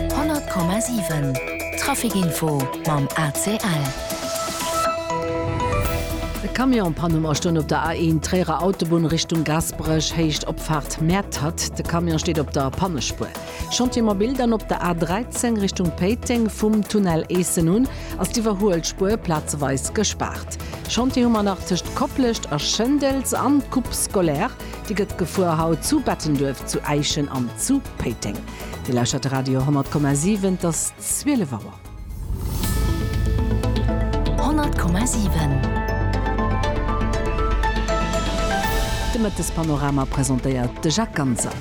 100,7 Traficinfo mam ACL. E Camion pannt um Astonn op der A1 Tréierer Autobunn Richtung Gaasperech, Héicht Opfaart Mäertert. De Camion steet op der Pannespuer. Chantier mobil dann op der A13 Richtung Péiteng, vum Tunnel Eessen un ass d'Iwwerhuelspuer plazeweis gespaart. Chantier hu mer nach tëscht Koplescht a Schëndels an d'Coupe scolaire. Déi gëtt gefuer haut zu Bettenduerf, zu Äischen an zu Péiteng. Dir lauschtert de Radio 10,7, et ass 12 Auer. 10,7 De Mëttespanorama presentéiert de Jacques Ganser.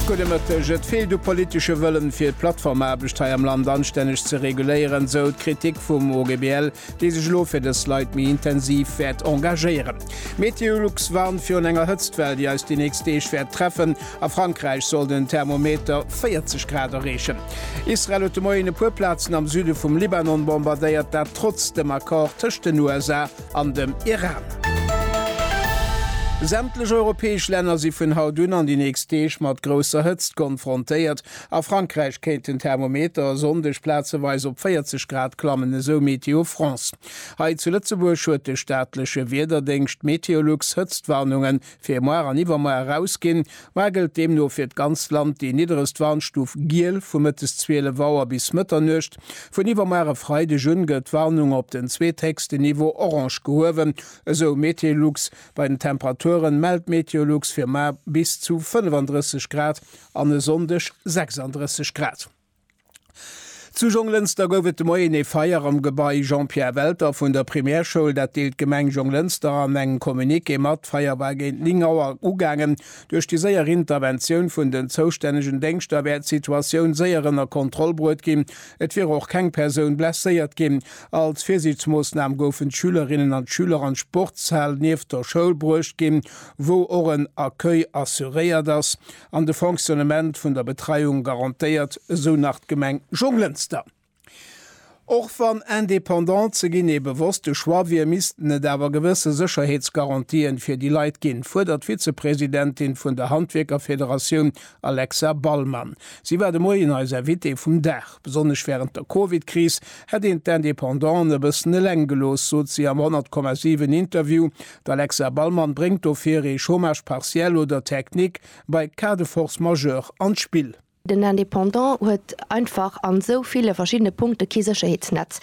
Gudde Mëtteg. Et feelt u politesche Wëllen, fir d'Plattformaarbecht hei am Land anstänneg ze reguléieren, sou d'Kritik vum OGBL. dee sech elo fir dës Leit méi intensiv wäert engagéieren. Meteolux warnt virun enger Hëtztwell, déi eis déi nächst Deeg wäert treffen. A Frankräich soll den Thermometer 40 Grad erreechen. Israel huet de Moien e puer Plazen am Süde vum Libanon bombardéiert, dat trotz dem Accord tëscht den USA an dem Iran. Sämtlech europäesch Länner si vun haut un an déi nächst Deeg mat grousser Hëtzt konfrontéiert. A Frankräich kéint den Thermometer e Sonndeg plazeweis op 40 Grad klammen, esou Météo France. Hei zu Lëtzebuerg huet de staatleche Wiederdéngscht Meteolux Hëtztwarnunge fir moar an iwwermoar erausginn. Moar gëllt deemno fir d'ganzt Land déi nidderegst Warnstuf Giel vu mëttes 12 Auer bis Mëtternuecht. Vun iwwermoar e Freideg un gëtt d'Warnung op den zweethéchsten Niveau Orange gehuewen, esou Meteolux. Bei den Temperaturen mellt Meteolux fir moar bis zu 35 Grad an e Sonndeg 36 Grad. Zu Jonglënster gouf et de Moien ee Feier am Gebai Jean-Pierre Welter vun der Primärschoul. Dat deelt d'Gemeng Jonglënster an engem Communiqué mat. D'Feier war géint 9 Auer ugaangen. Duerch déi séier Interventioun vun den zoustännegen Déngschter wär d'Situatioun séier ënner Kontroll bruet ginn. Et wier och keng Persoun blesséiert ginn. Als Virsiichtsmoossnam goufen d'Schülerinnen an d'Schüler an d'Sportshal nieft der Schoul bruecht ginn, wou och en Accueil assuréiert ass an de Fonctionnement vun der Betreiung garantéiert, esou nach d'Gemeng Jonglënster. Och wann indépendant ze ginn ee bewosste Choix wier, missten et awer gewësse Sécherheetsgarantië fir déi Leit ginn, fuerdert d'Vizepresidentin vun der Handwierkerfederatioun Alexa Ballmann. Si war de Moien eis Invitée vum Dag. Besonnesch wärend der Covid-Kris hätt een d'Independanten e bëssen eleng gelooss, sot si am 100,7 Interview D'Alexa Ballmann bréngt dofir ee Chômage partiel oder Technique bei Cas de force majeure an d'Spill. Den Indépendant huet einfach an esou ville verschiddene Punkte kee Sécherheetsnetz.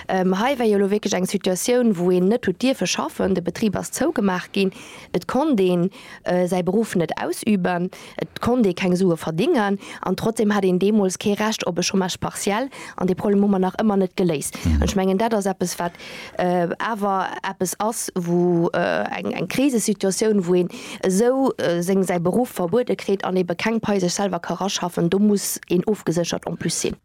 Hei war jo elo wierklech eng Situatioun, wou een net huet dierfe schaffen, de Betrib ass zougemaach ginn, et konnt een, säi Beruff net ausüben, et konnt ee keng Sue verdéngen an trotzdeem hat een deemools kee Recht op e Chômage partiel an dee Problem hu mer nach ëmmer net geléist. An ech mengen, dat ass eppes, wat awer eppes ass, wou eng Krisesituatioun, wou een esou seng, säi Beruff verbuede kritt an ebe keng Pai sech selwer ka raschaffen, do muss een ofgeséchert en plus sinn.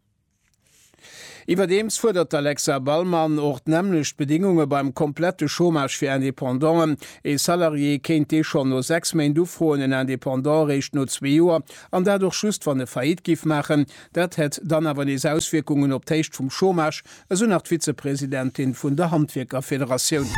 Iwwerdeems fuerdert d'Alexa Ballmann och d'nämmlecht Bedingunge beim komplette Chômage fir Indépendanten. Ee Salarié kéint dee schonn no sechs Méint ufroen, en Indépendant eréischt no zwee Joer, an dat och just wann e Faillite géif maachen. Dat hätt dann awer nees Auswierkungen op d'Héicht vum Chômage, esou nach d'Vizepresidentin vun der Handwierkerfederatioun.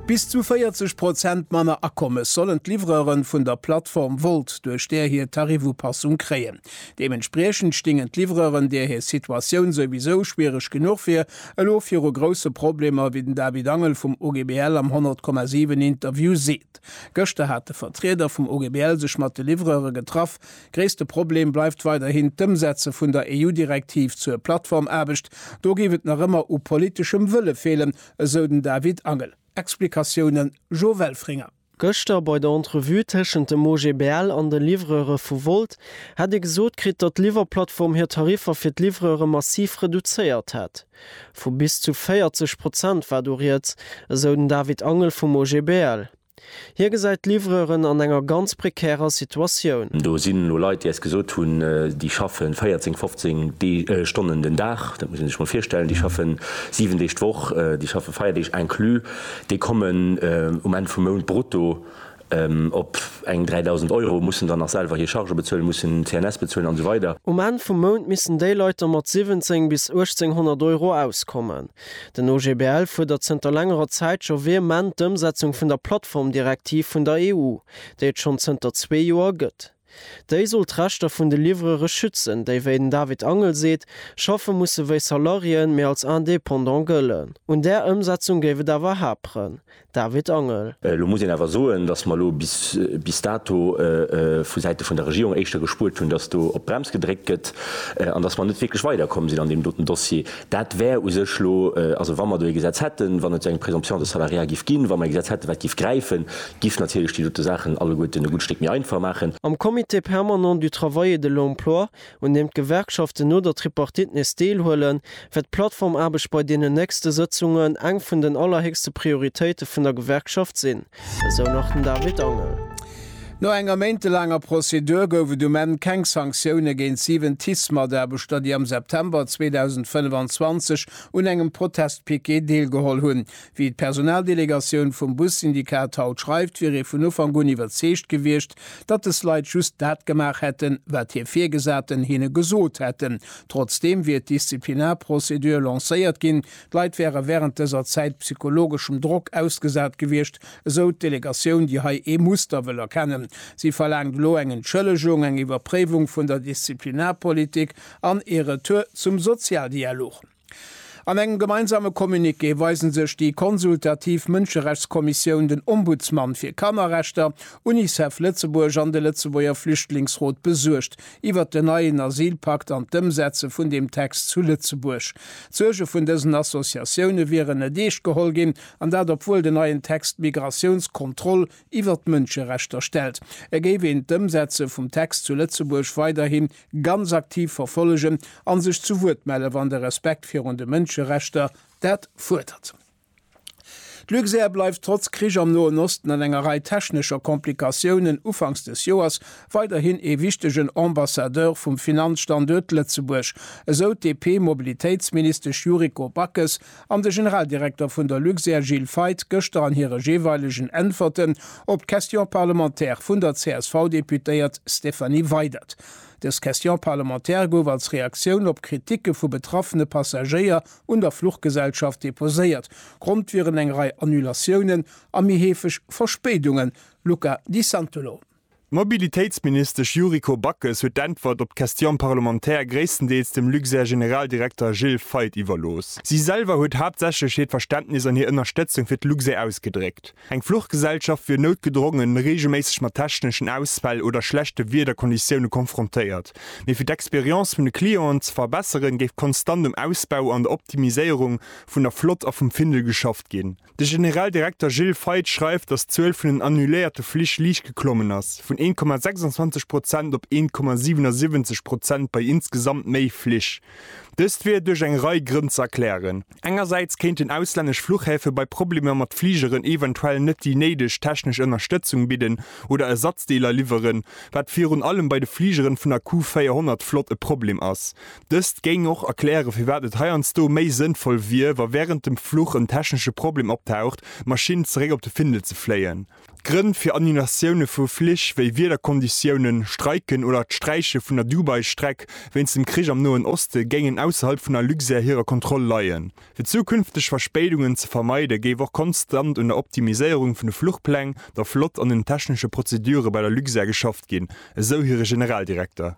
Bis zu 40 Prozent manner Akommes sollen d'Livreuren vun der Plattform Wolt duerch där hir Tarifupassung kréien. Deementspriechend stingen d'Livreuren, deer hir Situatioun souwisou schwiereg genuch wier, elo viru grousse Problemer, wéi den David Angel vum OGBL am 100,7 Interview seet. Gëschter hat de Vertrieder vum OGBL sech mat de Livreure getraff. Gréisste Problem bleift weiderhin d'Ëmsetze vun der EU-Direktiv zur Plattformaarbecht. Do géif et nach ëmmer u politeschem Wëlle feelen, esou den David Angel. Explikatioune Jo Welfringer. Gëschter bei der Entrevue tëschent dem OGBL an de Livreure vu Wolt hätt ee gesot kritt, datt d'Liwwerplattform hir Tariffer fir d'Livreure massiv reduzéiert hätt. Vu bis zu 40 Prozent war do rieds, esou den David Angel vum OGBL. Hie gesäit d'Livreuren an enger ganz prekärer Situatioun. Do sinn elo Leit, déi eis gesot hunn, déi schaffe 14, 15 Stonnen den Dag. Dat muss ee sech mol virstellen. Déi schaffen 7 Deeg d'Woch, déi schaffe Feierdeeg inclus. Déi kommen um Enn vum Mount brutto op eng 3.000 Euro, mussen dann nach selwer hir Chargë bezuelen, mussen CNS bezuelen an esou weider. Um Enn vum Mount missten déi Leit da mat 17 bis 1.800 Euro auskommen. Den OGBL fuerdert zënter längerer Zäit scho vehement d'Ëmsetzung vun der Plattformdirektiv vun der EU, déi et schonn zënter zwee Joer gëtt. Déi soll d'Rechter vun de Livrere schützen, déi, wéi den David Angel seet, schaffe musse wéi Salariéen, mee als Indépendant gëllen. Un där Ëmsetzung géif et awer haperen. David Angel. Elo muss een awer soen, datt mer elo bis dato vu Säite vun der Regierung éischter gespuert hunn, datt do op d'Brems gedréckt gëtt an datt mer net wierklech weiderkomm sinn an deem doten Dossier. Dat wär u sech elo, also wa mer do ee Gesetz hätten, wann et eng Présomption de salariat giff ginn, wa mer ee Gesetz hätten, wat giff gräifen, giff natierlech déi dote Saachen alleguerten e gutt Stéck méi einfach maachen. Am Comité permanent du travail et de l'emploi, un deem d'Gewerkschaften no der Tripartite nees deelhuelen, wäert d'Plattformaarbecht bei deenen nächste Sëtzungen eng vun den allerhéchste Prioritéite vun der Gewerkschaft sinn. Esou nach den David Angel. No enger méintelaanger Prozedur gouf et um Enn keng Sanktioune géint 7 TICE-Mataarbechter, déi am September 2025 un engem Protestpiquet deelgeholl hunn. Wéi d'Personaldelegatioun vum Bussyndikat haut schreift, wier ee vun Ufank un iwwerzeegt gewiescht, datt des Leit just dat gemaach hätten, wat hir Virgesaten hinne gesot hätten. Trotzdeem wier d'Disziplinarprozedur lancéiert ginn, D'Leit wäre wärend dëser Zäit psychologeschem Drock ausgesat gewiescht, esou d'Delegatioun, déi hei ee Muster wëll erkennen. Si verlaangt elo eng Entschëllegung, eng Iwwerpréiwung vun der Disziplinarpolitik an ee Retour zum Sozialdialog. An engem gemeinsame Communiqué weise sech déi consultativ Mënscherechtskommissioun, den Ombudsmann fir Kannerrechter, Unicef Lëtzebuerg an de Lëtzebuerger Flüchtlingsrot besuergt. iwwert den neien Asylpakt an d'Ëmsetze vun deem Text zu Lëtzebuerg. D'Suerge vun dësen Associatioune wieren net eescht geholl ginn, an dat obwuel den neien Text d'Migratiouns Kontroll iwwert d'Mënscherechter stellt. Et géif een d'Ëmsetze vum Text zu Lëtzebuerg weiderhi ganz aktiv verfollegen an sech zu Wuert melle wann de Respekt virun de Mënscherechter dat fuerdert. D'Luxair bleift trotz Krich am Noen Osten an enger Rei technescher Komplikatiounen ufanks des Joers weiderhin ee wichtegen Ambassadeur vum Finanzstanduert Lëtzebuerg, esou d'DP-Mobilitéitsministesch Yuriko Backes an de Generaldirekter vun der Luxair Gilles Feith gëschter an hire jeeweilegen Äntwerten op d'Question parlementaire vun der CSV-Deputéiert Stéphanie Weydert. Dës Question parlementaire gouf als Reaktioun op Kritike vu betraffene Passagéier, un der Fluchgesellschaft deposéiert. Grond wieren eng Rei Annulatiounen a méi heefeg Verspéidungen. Luca Di Santolo. D'Mobilitéitsministesch Yuriko Backes huet d'Äntwert op d'Question parlementaire gréisstendeels dem Luxair-Generaldirekter Gilles Feith iwwerlooss. Si selwer huet haaptsächlech hiert Verständnis an hir Ënnerstëtzung fir d'Luxair ausgedréckt. Eng Fluchgesellschaft wier noutgedrongen reegelméisseg mat techneschen Ausfäll oder schlechte Wiederkonditioune konfrontéiert, mee fir d'Experience vun de Clienten ze verbesseren, géif konstant um Ausbau an der Optimiséierung vun der Flott a vum Findel geschafft ginn. De General Direkter Gilles Feith schreift, datt d'Zuel vun den annuléierte Flich liicht geklommen ass, vun 1,26 Prozent op 1,77 Prozent bei insgesamt méi Flich. Dëst wier duerch eng Rei Grënn ze erklären. Engersäits kéinten auslännesch Fluchhäfe bei Problemer mat Fligeren eventuell net déi néideg technesch Ënnerstëtzung bidden oder Ersatzdeeler liwweren, wat virun allem bei de Fligeren vun der Q400-Flott e Problem ass. Dëst géing och erklären, firwat et heiansdo méi sënnvoll wier, wa wärend dem Fluch en technesche Problem optaucht, d'Maschinn zeréck op de Findel ze fléien. D'Grënn fir Annulatioune vu Flich wéi Wiederkonditiounen, Streiken oder d'Sträiche vun der Dubai-Streck wéinst dem Krich am Noen Oste géingen ausserhalb vun der Luxair hirer Kontroll leien. Fir zukünfteg Verspéidungen ze vermeiden, géif och konstant un der Optimiséierung vun de Fluchpläng, der Flott an den technesche Prozedure bei der Luxair geschafft ginn, esou hire Generaldirekter.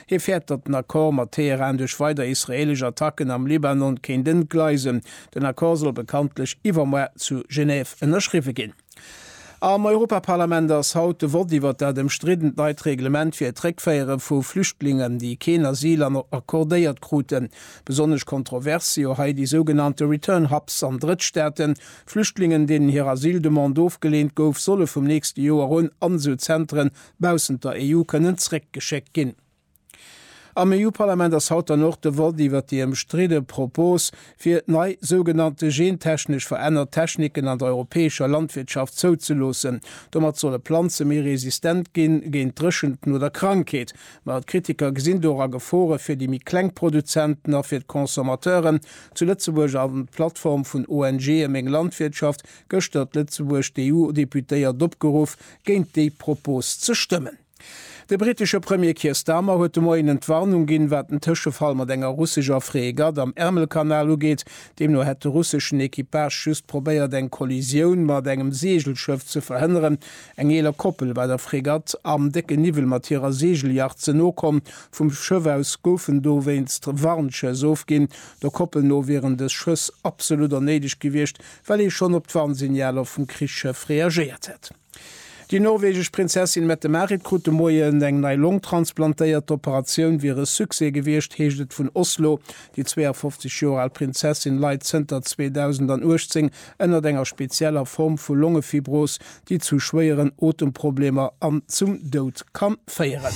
Hie fäert, datt den Accord mat Teheran duerch weider israeelesch Attacken am Libanon kéint entgleisen. Den Accord soll bekanntlech iwwermoar zu Genève ënnerschriwwe ginn. Am Europaparlament ass haut de Vott iwwert dat ëmstriddent neit Reglement fir d'Réckféiere vu Flüchtlingen, déi keen Asyl accordéiert kruten. Besonnesch kontrovers si jo hei déi sougenannte Return Hubs an Drëttstaaten. Flüchtlingen, deenen hir Asyldemande ofgeleent gouf, solle vum nächste Joer un an esou Zenteren baussent der EU kënnen zréckgeschéckt ginn. Am EU-Parlament ass haut dann och de Vott iwwert déi ëmstridde Propos, fir nei sougenannte gentechnesch verännert Techniken an der europäescher Landwirtschaft zouzeloossen. Domat solle Planze méi resistent ginn, géint Dréchenten oder Krankheet. Ma d'Kritiker gesinn dora Gefore fir déi méi kleng Produzenten a fir d'Consommateuren. Zu Lëtzebuerg an d'Plattform vun ONGe Meng Landwirtschaft gëschter d'Lëtzebuerg d'EU-Deputéiert opgeruff, géint déi Propos ze stëmmen. De brittesche Premier Keir Starmer huet de Moien Entwarnung ginn, wat den Tëschefall mat enger russescher Fregatt am Ärmelkanal ugeet. Deemno hätt de russeschen Equipage just probéiert, eng Kollisioun mat engem Seegelschëff ze verhënneren. Eng eeler Koppel war der Fregatt am décken Niwwel mat hirer Seegeljacht ze no komm. Vum Schëff aus goufen dowéinst Warnschëss ofginn. Der Koppel no wieren dës Schëss absolut onnéideg gewiescht, well ee schonn op d'Warnsignaler vum Krichsschëff reagéiert hätt. Déi norwegesch Prinzessin Mette-Marit krut de Moien eng nei Long transplantéiert. D'Operatioun wier e Succès gewiescht, heescht et vun Oslo. Déi 52 Joer al Prinzessin leit zënter 2018 ënnert enger spezieller Form vu Longefibros, déi zu schwéieren Otemproblemer an zum Doud kann féieren.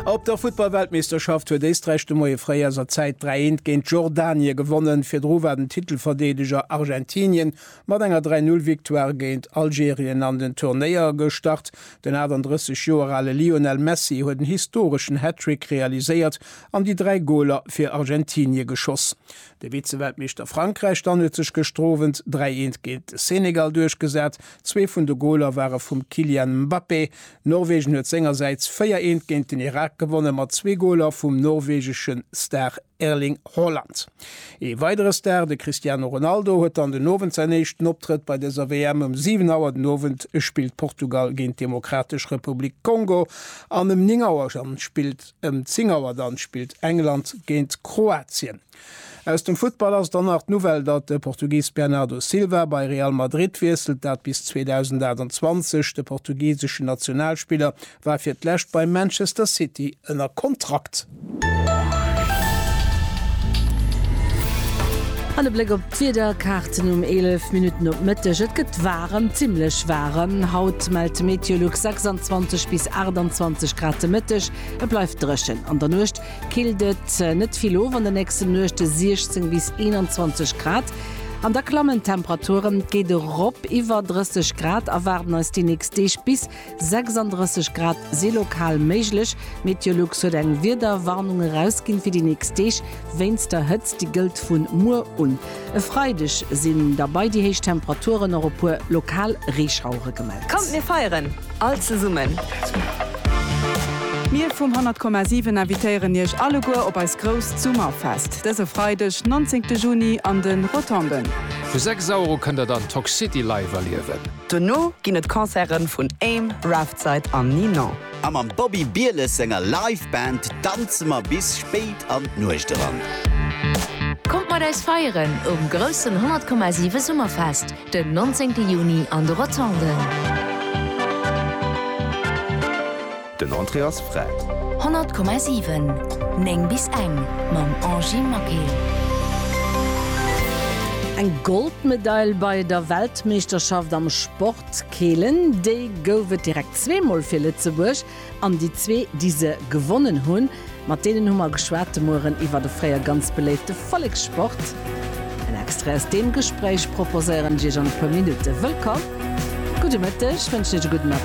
A op der Futtballweltmeeschterschaft huet Éisträich de Moie fréi aus a Zäit 3 Eent géint Jordanie gewonnen. Virdru war den Titelverdeedeger Argentinien mat enger 3 Null Victoire géint Algerien an den Turnéier gestart. Den 38 Joer ale Lionel Messi huet en historeschen Hattrick realiséiert an déi 3 Goler fir Argentinie geschoss. De Vize-Weltmeeschter Frankräich dann huet sech gëschter Owend 3 eent géint de Senegal duerchgesat. Zwee vun de Goler ware vum Kylian Mbappé. Norwegen huet sengersäits 4 eent géint den Irak gewonnen, mat zwee Goler vum norwegesche Star Erling Haaland. Ee weidere Star, de Cristiano Ronaldo, huet dann den Owend säin éischten Optrëtt bei dëser WM. Ëm 7 Auer den Owend spillt Portugal géint d'Demokratesch Republik Kongo an ëm 9 Auer dann spillt. Ëm 10 Auer dann spillt England géint Kroatien. Aus dem Futtball ass dann nach d'Nouvelle, datt de Portugis Bernardo Silva bei Real Madrid wiesselt. Dat bis 2028 de portugiseschen Nationalspiller war fir d'lescht bei Manchester City ënner Kontrakt. An e Bléck op. D'Wiederkaarten um 11 Minutten op Mëtteg, Et gëtt waarem, zimmlech waarem. Haut mellt d'Meteolux 26 bis 28 Grad de Mëtteg. Et bleift dréchen. An der Nuecht killt et net vill of, an de nächste Nuechte 16 bis 21 Grad. An da klammen d'Temperaturen, et geet erop iwwer 30 Grad, erwaarden eis déi nächst Deeg bis 36 Grad si lokal méiglech. Meteolux huet eng Wiederwarnung erausginn fir déi nächst Deeg wéinst der Hëtzt. Déi gëllt vun muer un e Freideg. Sinn da bei déi héich Temperaturen och e puer lokal Reeschauere gemellt. Kommt mir feieren all zesummen! Mir vum 100,7 invitéieren iech alleguer op eist grousst Summerfest dëse Freideg 19 Juni an de Rotonden. Vu 6 Auer u kënnt der dann Toxcity live erliewen. Dono ginn et Concerten vun Aim, Raftside an Ninon. A mam Bobby Bieles senger Live Band danze mer bis spéit an d'Nuecht eran. Kommt mat eis feieren um groussen 100,7 Summerfest den 19 Juni an de Rotonden. Den Entrée ass fräi. 100,7, 9 bis eng mam Angie Maquet. Eng Goldmedail bei der Weltmeeschterschaft am Sport Keelen, déi gouf et direkt zweemol fir Lëtzebuerg. An déi zwee, déi se gewonnen hunn, mat deenen hu mer geschwat de Mueren iwwert e fréier ganz beléifte Vollekssport. En Extrait aus deem Gespréich proposéieren ech Iech an e puer Minutte. Wëllkomm, gudde Mëtteg, wënschen Iech e gudden Appetit.